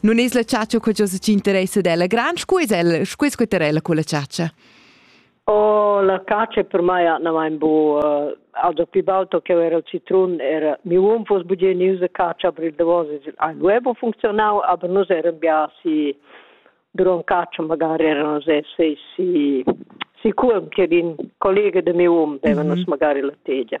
Non es la chatscha co giò ci interessa della gran, scu es el, scu es queterella con la chatscha? Oh, la cacia per mai ha mein bu uh, auto più alto che era il citrun era mi un fos buge news de cacia per il davos ein web funzionau aber nos era bia si duron cacia magari erano se se si si curm che din collega de mio um devano mm -hmm. magari la tegia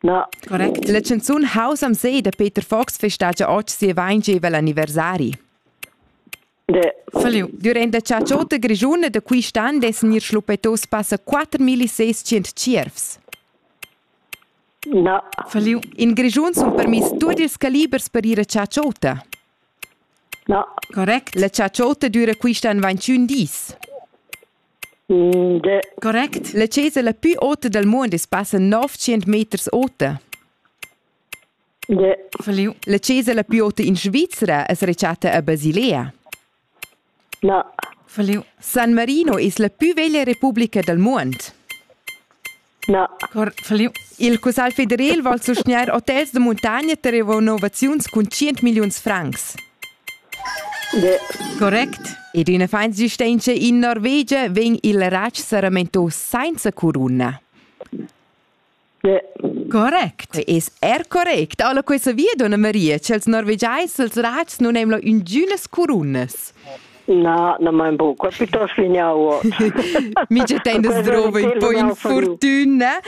No. Correct. La canzun House am See da Peter Fox festagia oggi sia 20 anniversari. De. Falliu. Durante cha Ciota Grigiuna da quist'an des gnir schluppetos passa 4600 tschiervs. No. Falliu. In Grigiun sun permiss tuot ils calibers per ir a Ciaciota. No. Correct. La Ciaciota düra quist'an 21 dis. Correct. La chesa la pü ota dal muond es passa 900 meters ota. Ja. Verlieu. La chesa la pü ota in Svizra es rechatta a Basilea. Na. Verlieu. San Marino es la pü veglia republica dal muond. No. Il Cussagl federal vul sustgnair hotels da muntogna tar renovaziuns cun 100 milliuns francs. De. Correct. Ed ina fans gistentscha in Norvegia vegn il ratsch saramentos senza coruna. De. Correct. Es er correct. Alla questa via, donna Maria, ch'els norvegiais, els rats non emlo ingünas corunas. Na, na mein bu. Qua piuttost vignau. Mi che tein das drove un po' infortuna.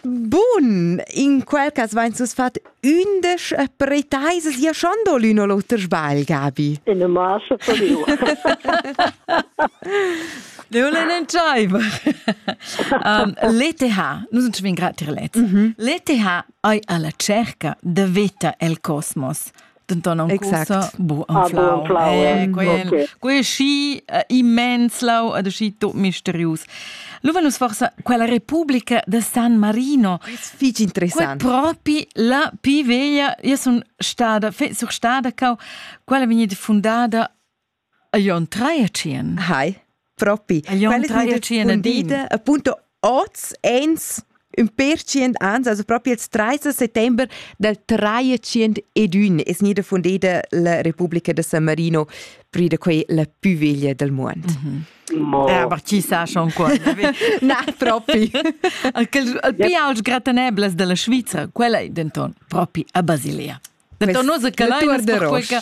Bun, in quel cas vain sus fat undisch pretaisas ja schon do l'uno l'oter sbagl, Gabi. In a massa per io. Leolen entschaiva. um, L'ETH, nus uns vin gratir let. Mm -hmm. L'ETH ei alla cerca de veta el cosmos. denton ancusa bu anflau quei schi immens lau ad schi tot misterius Luva nus forsa quella Repubblica de San Marino fich interessant propi la pi veglia io sun stada sur stada cau quella vegnit fundada Jon Traiacien. Hi. Propi. Quelle tradetschien appunto oz ens un percient ans, also proprio il 30 settembre del 301 es nida fundeda la Repubblica de San Marino, pride quei la più veglia del mondo. Mm -hmm. Eh, aber chi sa schon qua. Na, propi. Il più aut gratenebles della Svizzera, quella è denton propi a Basilia. Denton nus che l'ai per quella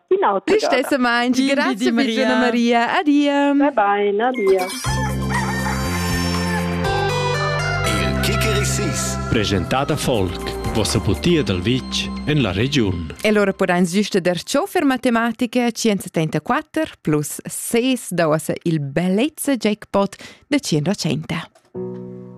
Listessamain, grazie Maria. Maria. Adia. Bye bye, adia. Il Kikerisis. Presentata Folk. Vossa putia dal vitg en la regiun. E allora podain süste der ciò per matematica 134 plus 6 da ossa il bellezza jackpot de 100.